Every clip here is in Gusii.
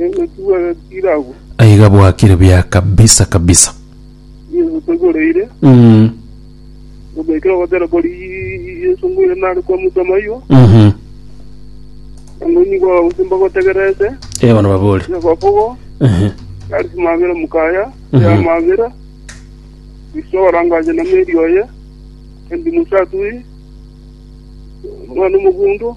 Egotugwa agatiira agwo. Aiga bwakire bia kabisa kabisa. Yesu tagoreire. Mm. Obeekire ogotera kori Yesu ngoire nare kwa mutama igo. Mhm. Ngoni kwa osimba gotegerete. Eh, bono babore. Ya bafogo. Ehe. Ari simabera mukaya. Mhm. Ya mabera. Isora ngaje na meri oye. Endi musatui. Mwana mugundo.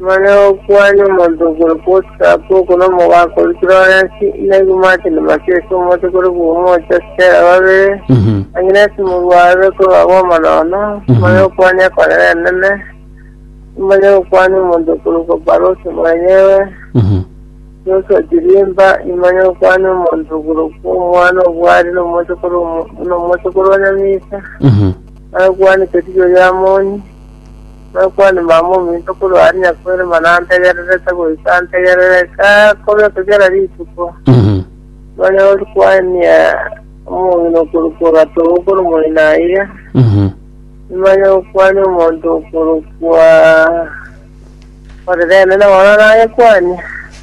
Mana gokwania omonto okore kuotsapu oko nomogaka oria Florence, naigwe Martin Matias omote kore Buomocha, Stella babere, Agnes Murwarure kore baba omonono, mana gokwania ekorera enene, nimanye gokwania omonto okorokwa Barose mwenyewe, Joshua Chirimba, nimanye gokwania omonto okorokwa omwana obwari nomote kore omo- nomote kore Onyamisa, mana gokwania Keticho Yamoni, Nokwani mama ominto korwa aria nyakoirima nantegererete goika antegerere kakobe kugera rituko. Nonya oria kwaenia omong'ina okorokwa ogatogo kore moino aye, nimanye gokwani omonto okorokwa orerene nabana nagekwania.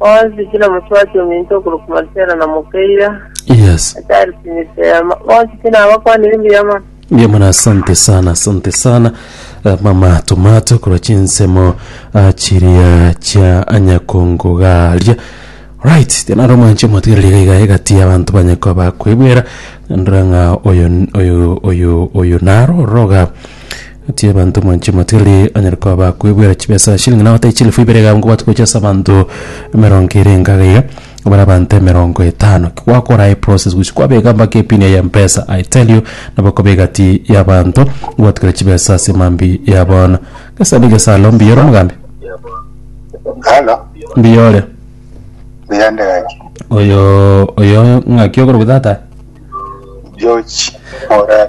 Bonsi buna motwati ominto okorokwa Marcelo na Mokeira, Yes. achari Pinisema, bonsi buna abakwanire mbuya mono. Mbuya mono asante sana asante sana Eh, mama tomato korwa chinsemo ah, chiria chia anyakongo garia right tianare omwanche omatigereri iga iga egati y'abanto banyako bakwebwera ndora ng'a oyo oyo oyo oyo naro oroga Natie abanto mwanche motili onyare koba bakwebwera chibesa chilingi nao tai chilifu ibere iga nko gwatogochia ase abanto emerongo ere engaga iga bare abanto emerongo etano gwakora aye process gochia kwabeka mpaka epini yaye ya mpesa I tell you nabo ekoba egati ya abanto gwatugera chibesa ase emambia ya bono gesa ni gesa alo mbuya ore omogambi Halo, mbuya ore mbuya ndi gaki. oyo oyo ng'aki ogoro gotata George Morara.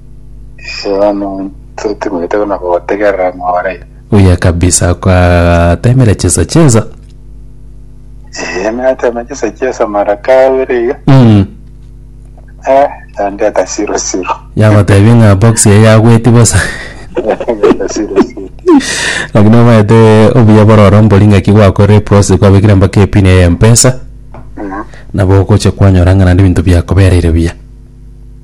Inche timanyete buna gotegerera more. Buya kabisa kwatemire chesa chesa. Eh, natema chesa chesa mara kabere iga. Mm. Eh, yandeta siro siro. Yagotebi ng'a box eye yagweti bosa. Yandeta siro siro. Lakini omaete obuya bororo mbori ng'aki gwakorire process kwabekire mpaka epin ya Mpesa. Mm. nabo ogocha kwanyora ng'a naende ebinto biakobereire buya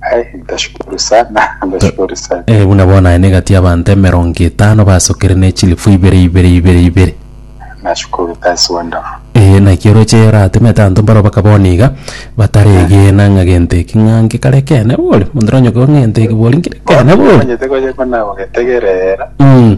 Ai, ndashukuru sana, ndashukuru sana. Eh, buna bono aye negati y'abanto emerongo etano basokire ne chilifu ibere ibere ibere ibere. Nashukuru, that's wonderful. Eh, naki oroche oratemete abanto mbaro bakaba one iga bataregena ng'a gento eki ng'a nkekare kene bori, monto nonyoka ng'a gento eki bori nkire kene bori. Omanyete gocha ko nagogetegerera, Mm.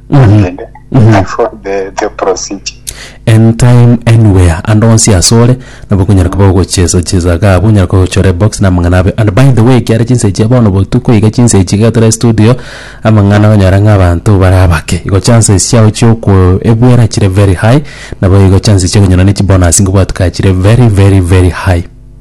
Naende I followed the, the procedure. anytime anywhere ande onsi asore nabo okonyara koba ogochesa chesa iga abwo onyara koba ochore box na amang'ana abe and by the way ekiara chinsa echia bono botuko iga chinsa echi iga tore studio amang'ana onyore ng'a abanto bare abake igo chances chiao chiokoebuera chire very high nabo igo chances chia okonyora ne chibonus ngobwateka chire very very very high.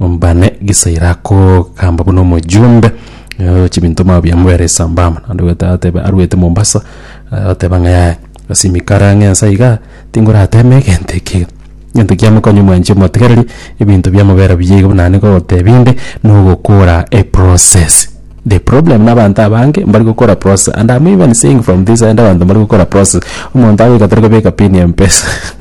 mbane gisaira akogamba buna omojumbe eh, chibinto mao biamobera esambamba naende gwete atebe arwete mombasa eh, ateba ng'a yaya asimikara ng'a ensa iga tingorateme egento eke egento kiamokonye mwanchi omotigereri ebinto biamobera buya iga buna naende ngogotebi inde nogokora eprocess the problem na abanto abange mbari gokora process and am even saying from this end abanto mbari gokora process omonto agoika tari kobeka pin ya mpesa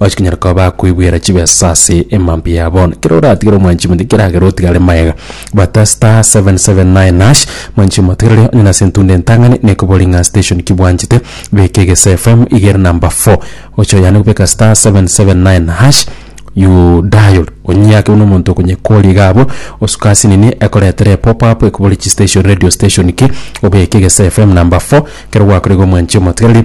Ochi konyara koba bakoigwera chibesa ase emambi yabo. Kero oratigere omwanchi monto keragera otigare mayega. Bata star 779 hash mwanchi omotegerere onye nase entunda entang'ani nekobori ng'a station ki bwanchete beka egeso FM iga ere number 4 oche oyane gobeka star 779 hash you dial onyiake buna omonto okonyekoria iga abwo osuke ase nini ekoretere pop up ekobori chi station radio station ki obeke egeso FM number 4 kero gwakorire omwanchi omotigereri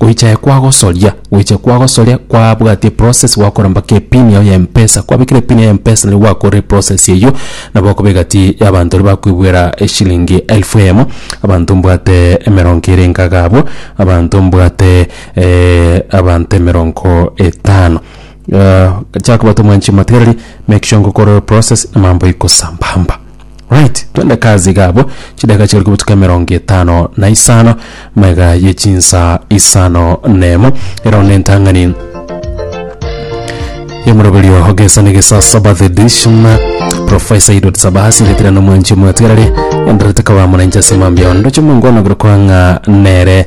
Goicha aye kwagosoria, goicha kwagosoria kwabwatia process gwakora mpaka epin yao ya mpesa. Kwabekire epin yao ya mpesa nigo gwakorire process eyio nabo okobee gati y'abanto baria bakoibwera eshilingi elfu eyemo, abanto mbwate emerongo ere enkaga abwo, abanto mbwate abanto emerongo etano. Chiakobwata omwanchima tiga riria make sure ngokora process amambo ikosambamba. Right, twende kazi iga abwo, chidakika chigare korwa botuko emerongo etano na isano, maiga ye chinsa isano nemo, erao ne entang'ani yomoroberio ogesani gesa saba the edition profesa idot sabasi ngetira nomwanchi omwatigarari enderete koba mwananchi ase mambia ondo chimongwana goro kwang'a nere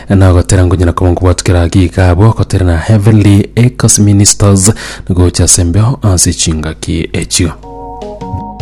Nagotera ngonyara koba nkobwatwa kera geek abwo gotera na heavenly echoes ministers, na gocha ase embeo ase chingaki echio.